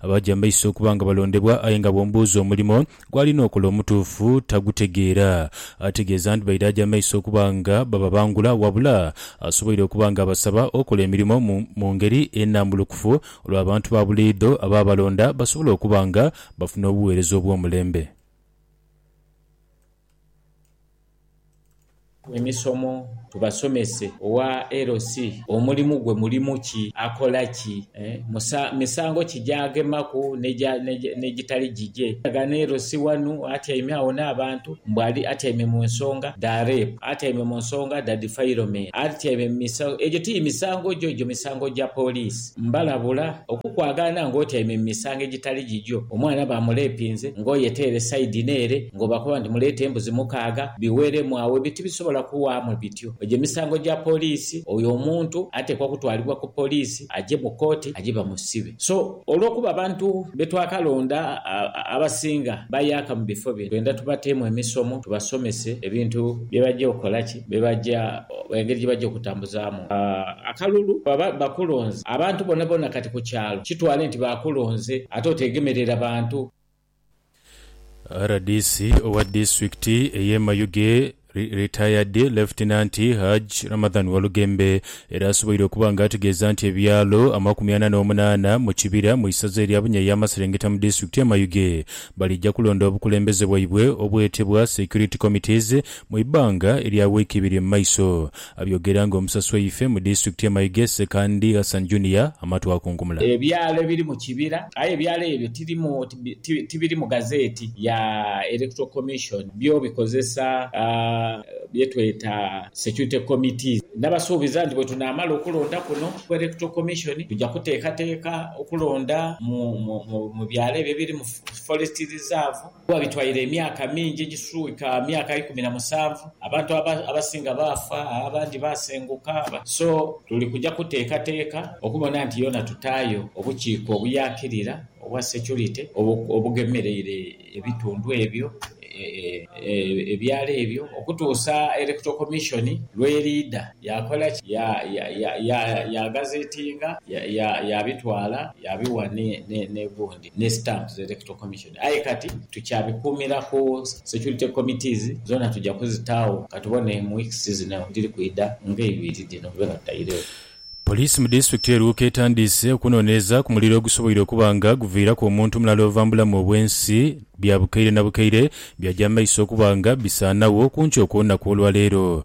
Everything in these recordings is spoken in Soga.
Abaja amaiso okuba nga balondebwa, aye nga bw'omubuuza omulimo gw'alina okola omutuufu tagutegeera. Ategeeza nti baidha aja amaiso okuba nga bababangula, wabula asoboire okuba nga abasaba okola emirimo mu mu ngeri enambulukufu olwo abantu ba buliidho abaabalonda basobole okuba nga bafuna obuweereza obw'omulembe. Emisomo tubasomese owa LC omulimu gwe mulimu ki, akola ki, misango ki gy'agemaku n'egitali gigye. Ghano LC wanu atyaime agho n'abantu mbu ali atyaime mu nsonga dha Rape, atyaime mu nsonga dha Defilement, atyaime mu misango. Egyo ti misango gyo, egyo misango gya poliisi. Mbalabula, okukwagaana ng'otyaime mu misango egitali gigyo, omwana baamuleepinze ng'oyeteere saidi n'ere, ng'obakoba nti muleete embuzi mukaaga, biweeremu agho. Ebyo tibisobola kuwaamu bityo. Egyo misango gya poliisi. Oyo omuntu ateekwa kutwalibwa ku poliisi, aje mu kooti, aje bamusibe. So, olw'okuba abantu be twakalonda abasinga bayaaka mu bifo bino, twenda tubateemu emisomo, tubasomese ebintu bye baja okola ki. byebaja engeri gyebaja okutambuzaamu akalulu bwebaba bakulonze abantu bonabona kati ku kyalo kitwale nti baakulonze ate oteegemerera bantu. Rdc owa disitulikiti ey'e Mayuge, Retired Lieutenant Hajj Ramadhan Walugembe era asoboire okuba nga ategeeza nti ebyalo amakumi ana n'omunaana mu Kibira mu isaza erya Bunya ey'amaserengeta mu disitulikiti y'e Mayuge balija kulonda obukulembeze bwaibwe obwetebwa Security Committees Mu ibbanga erya wiiki ibiri mu maiso, abyogera nga omusasi waife mu disitulikiti ye Mayuge Ssekandi Hassan Junior amatu akunkumula. Ebyalo ebiri mu kibira, aye ebyalo ebyo tibiri mu gazeeti ya Electoral Commission, byo bikozesa bye tweta Security Committees. Nabasuubiza nti bwetunaamala okulonda kuno ku Electoral Commission, tuja kuteekateeka okulonda mu byalo ebyo ebiri mu Forest Reserve. Kuba bitwaire emyaka mingi egiswika myaka ikumi na musanvu, abantu abasinga baafa, abandi baasenguka. So tuli kuja kuteekateeka okubona nti yoona tutaayo obukiiko obuyakirira obwa securite obugemereire ebitundu ebyo, ebyalo ebyo, okutuusa Electoral Commission lw'eriidha yaakola ki? Yaagazetinga, yaabitwala, yaabiwa n'egundi. ne Stamps za Electoral Commission aye kati tukyabikuumira ku Security Committees. Zoona tuja kuzitaagho katubone mu weeks zino edhiri kwidha nga ibiri dhino bwedhiba nga dhitairegho. Poliisi mu disitulikiti e Luuka etandiise okunoneeza ku muliro ogusoboire okuba nga guviiraku omuntu mulala ova mu bulamu obw'ensi bya bukaire na bukaire byagya mu maiso okuba nga bisaanagho ku nkyo okw'olunaku olwaleero.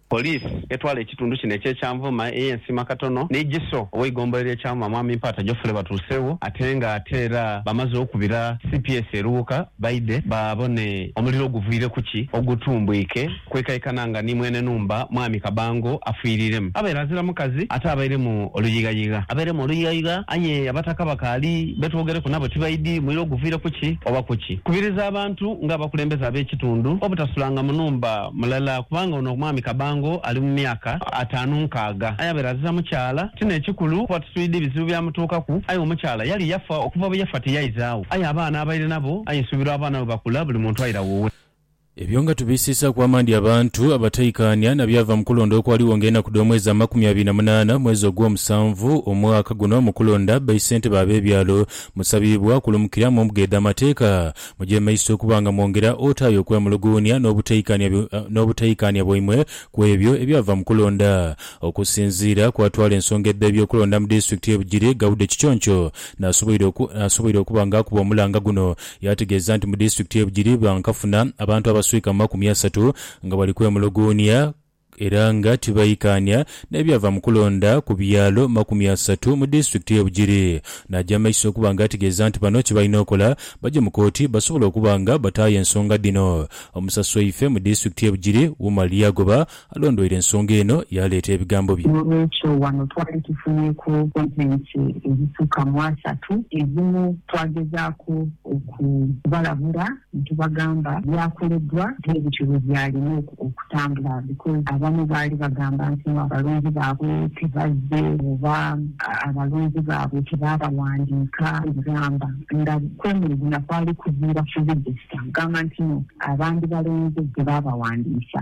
Police etwala ekitundu kino ekye Kyanvuma eye Nsiima Katono ni GISO oweigombolola lye Kyanvuma Mwami Mpaata Geoffrey batuusewo ate nga ate era bamaze okubira cps eruwuka baidhe babone omuliro oguvwire kuki ogutumbwike kwekaekana nga ni mwene numba Mwami Kabango afwiriremu abaire azira mukazi ate abairemu oluyighayigha. Abairemu oluyighayigha aye abataka bakaali betwogereku nabo tibaidhi muliro guvwire kuki oba kuki. Kubiriza abantu nga abakulembeze abekitundu obutasulanga mu numba. mulala kubanga ono omwami Kabango ali mu myaka ataanu nkaaga aye abeera aziza mukyala. Kino ekikulu kuba tuswidi bizibu byamutuukaku aye omukyala yali yafa okuva bwe yafa tiyaizaawo aye abaana abaire nabo aye nsuubira abaana bwe bakula buli muntu aira wuwe. Ebyo nga tubisiisaaku amaani abantu abataikaanya na byava mu kulonda okwaligho ng'enaku dh'omwezi amakumi abiri na munaana mwezi ogwomusanvu omwaka guno mu kulonda baisentebe ab'ebyalo, musabiibwa okulumukira mu mbuga edh'amateeka Muje mu maiso okuba nga mwongera otaayo okwemuluguunia n'obutaikaania n'obutaikaania bwaimwe ku ebyo ebyava mu kulonda. Okusinziira ku atwala ensonga edha eby'okulonda mu disitulikiti y'e Bugiri, Gaude Kiconco, n'asoboire oku, n'asoboire okuba nga akuba omulanga guno, yaategeeza nti mu disitulikiti y'e Bugiri bankafuna abantu abaswika mu makumi asatu nga bali kwemuluguunia era nga tibaikaania n'ebyava mu kulonda ku byalo makumi asatu mu disitulikiti y'e Bugiri n'aja mu maiso okuba nga ategeeza nti bano kye balina okola baje mu kooti basobole okuba nga bataayo ensonga dhino omusasi waife mu disitulikiti y'e Bugiri Umar Lyagoba alondweire ensonga eno yaaleeta ebigambo bye. N'olwekyo wano twali tufunyeeku sitetimenti edhisukka mu asatu, edhimu twagezaaku okubalabula Nitubagamba byakoledwa bye bityo bwe byalina okutambula because abamu baali bagamba nti no abalonzi baabwe tebazze oba abalonzi baabwe tebaabawandiika gamba nga kwemulugunya kwali kuviira ku register kugamba nti no abandibalonze tebaabawandiisa.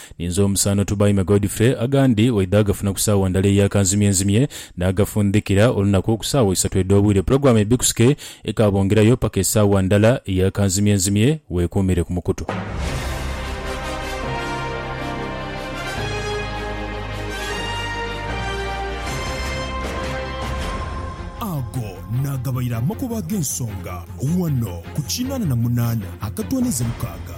Ninze omusanhu Tubaime Godfrey, agandi waidha agafuna ku saawa ndala eya kanzimyenzimye n'agafundhikira olunaku ku saawa isatu edh'obwire. Pulogulaamu ebikusike ekaabongerayo paka esaawa ndala eya kanzimyenzimye. Weekuumire ku mukutu. Ago naagabaire amakubo ag'ensonga ghano ku kinaana na munaana akatwaniza mukaaga.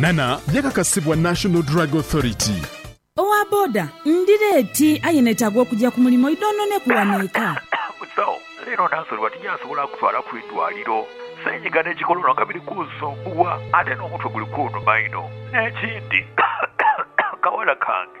Nana yakakasibwa National Drug Authority. Owa boda, Ndi leeti aye netaaga okugya ku mulimo idhoononeku wano eka. Musawo, Leero Nansoli bati gy'asobola akutwala ku idwaliro. Senyiga ne kikolono nga biri kunsumbuwa ate n'omutwe guli kunuma inho. N'ekindi, kawala kange.